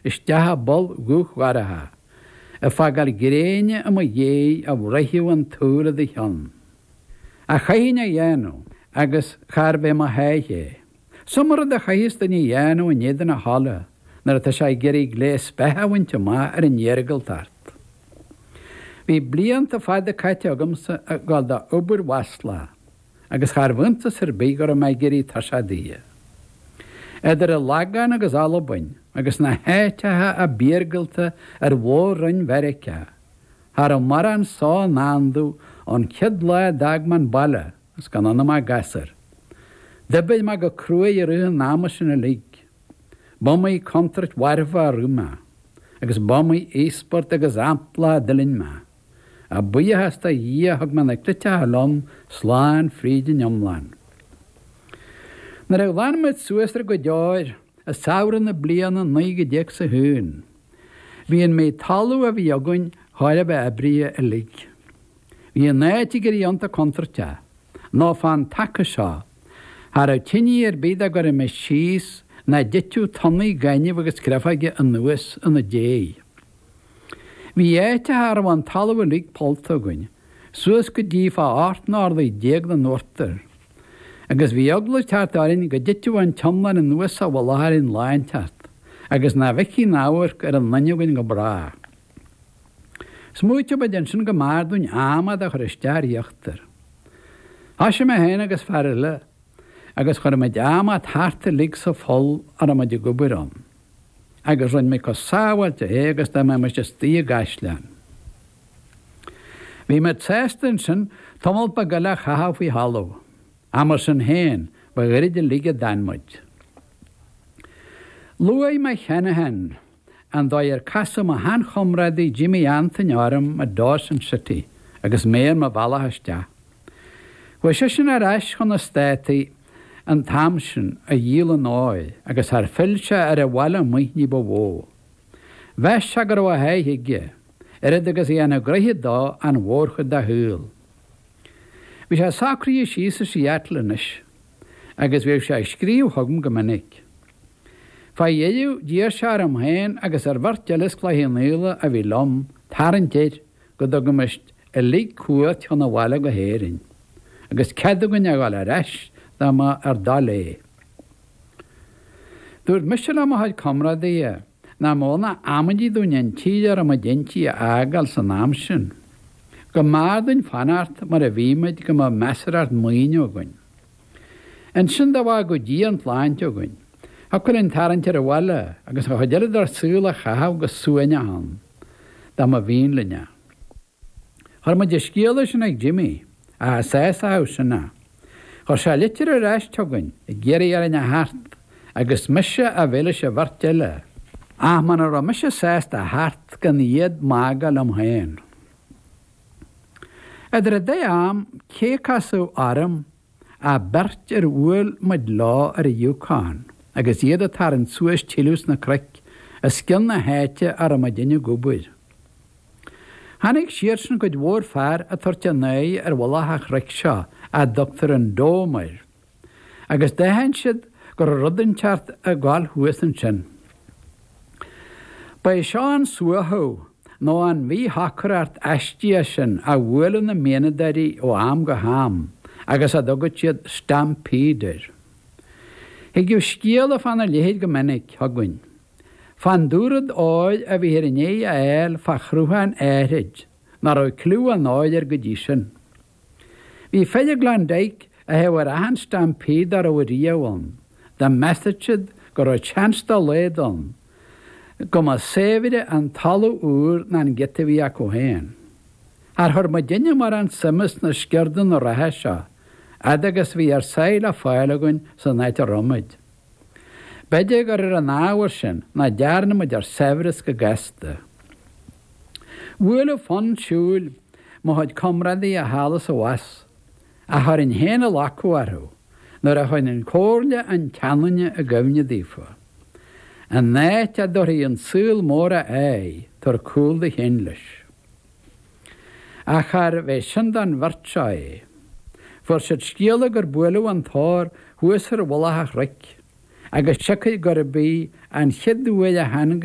isteach i bpoll dhubh dhorcha, ag fágáil gréine i mo dhiaidh a bhruithfeadh an tsúil i do chionn. Ach chaithfinn a dhéanamh, agus charbh é mo sháith é? Is iomaí rud a chaitheas duine a dhéanamh in éadan a thola nuair atá sé ag iarraidh gléas beatha a bhaint amach ar an iargúltacht. Bhí blianta fada caite agamsa ag gabháil do obair mhaslach. agus charbh iontas ar bith go raibh mé ag éirí tuirseach di. Idir an Lagán agus Albain agus na háiteacha ab iargúlta ar mhór-roinn Mheiriceá, cha raibh mórán só i ndán domh ón chéad lá a d'fhág mé an baile agus gan ionam ach gasúr. D'oibrigh mé go cruaidh i rith an ama sin uilig. B'iomaí contúirt mharfach a rith mé, agus b'iomaí íospairt agus ampla a d'fhuiling mé. A bhuíochas do Dhia thug mé na cleiteacha liom slán fríd an iomlán. Nuair a ghlan muid suas ár gcuid óir, i samhradh na bliana 1901, bhí an méid talaimh a bhí againn chóir a bheith oibrithe uilig. Bhí an áit ag éirí iontach contúirteach, nó fán taca seo, cha rabh tinidh ar bith dá gcuirfimis síos nach dtitfeadh tonnaí gainimh agus creafóige anuas ina déidh. Bhí áiteacha a rabh an talamh uilig pollta againn, suas go dtí fá 18 n-orlaí den uachtar, agus bhí eagla ag teacht orainn go dtitfeadh an t-iomlán anuas sa mhullach orainn lá inteacht, agus nach bhfeicfí aon amharc ar aon duine againn go brách. Smaoitigh muid ansin go mb'fhearr dúinn adhmad a chur isteach ar íochtar. Thoisigh mé féin agus fear eile, agus chuir muid adhmad thart uilig sa pholl a rabh muid ag obair ann. agus rinne mé comh sábháilte é agus dá mbeimis istigh i gcaisleán. Bhí mé sásta ansin tamall beag eile a chaitheamh faoi thalamh, ach mar sin féin, ba ghairid uilig a d'fhan muid. Luaigh mé cheana féin an dóigh ar casadh mo shean-chomrádaí Jimmy Antaine orm i Dawson City agus mé ar mo bhealach isteach. Chuaigh seisean ar ais chun na Státaí an t-am sin, a dhíol an óir, agus char phill sé ar an bhaile amuigh ní ba mhó. Mheas sé go raibh a sháith aige, oiread agus a dhéanfadh gnoithe dó an mhórchuid dá shaol. Bhí sé socraithe síos i Seattle anois, agus bhíodh sé ag scríobh chugam go minic. Fá dheireadh, d'iarr sé orm féin agus ar bheirt eile as Cloich Chionnaola a bhí liom tarraingt air go dtugaimis uilig cuairt chun an bhaile go hÉirinn, agus cead againn a ghabháil ar ais dá mba ár dtoil é. Dúirt mise le mo chuid comrádaithe nach mó ná amaidí dúinn an tír a raibh muid inti a fhágáil san am sin. Go mb'fhearr dúinn fanacht mar a bhí muid go mbeadh measarthacht maoine againn. Ansin dá bhfágadh Dia an tsláinte againn, thiocfadh linn tarraingt ar an bhaile agus an chuid eile dár saol a chaitheamh go suaimhneach ann. dá mba mhian linn é. Chuir muid an scéala sin ag Jimmy, ach cha sásódh sin é. Chuir sé litir ar ais chugainn ag iarraidh orainn a theacht agus mise a bheith leis an bheirt eile, ach muna raibh mise sásta a theacht gan iad bacadh liom féin. Idir an dá am, cé a casadh orm? ach beirt ar bhuail muid leo ar an Yukon agus iad a' tarraingt suas tuilleadh sna cnoic os cionn na háite a raibh muidinne ag obair. Chonaic siadsan cuid mhór fear a' tabhairt a n-aghaidh ar mhullach a' chnoic seo a dtugtar an Dome air, agus d'aithin siad go raibh rud inteacht a' gabháil thuas ansin. Ba é seo an suaitheadh nó an mhíshocracht aistíoch sin a bhuaileann na mianadóirí ó am go ham agus a dtugann siad stampede air. Thigeadh scéala fána leithéid go minic chugainn, fán dúrud óir a bhíthear i ndiaidh a fháil fá shruthán áithrid nach raibh cliú an óir air go dtí sin. Bhí fir i gKlondike, a théadh ar achan stampede dá raibh riamh ann, dá measadh siad go raibh chance dá laghad ann go mba saibhre an talamh úr ná an giota a bhí acu féin. Char chuir muidinne mórán suime sna sciurdanna reatha seo, fhad agus a bhí ár sáith le fáil againn san áit a raibh muid? B'fhéidir gur ar an ábhar sin nach dearna muid ár saibhreas go gasta. Bhuaileadh fonn siúil mo chuid comrádaí thall is abhus, ach chuirinn féin an locadh orthu, nuair a chuirinn comhairle an tseanduine i gcuimhne daofa. An áit a dtabharfaidh an saol mór a aghaidh, tabhair cúl do chinn leis. Ach charbh é sin don bheirt seo é? Fuair siad scéala gur buaileadh an t-ór thuas ar mhullach an chnoic, agus siocair gurb í an chéad uair a tháinig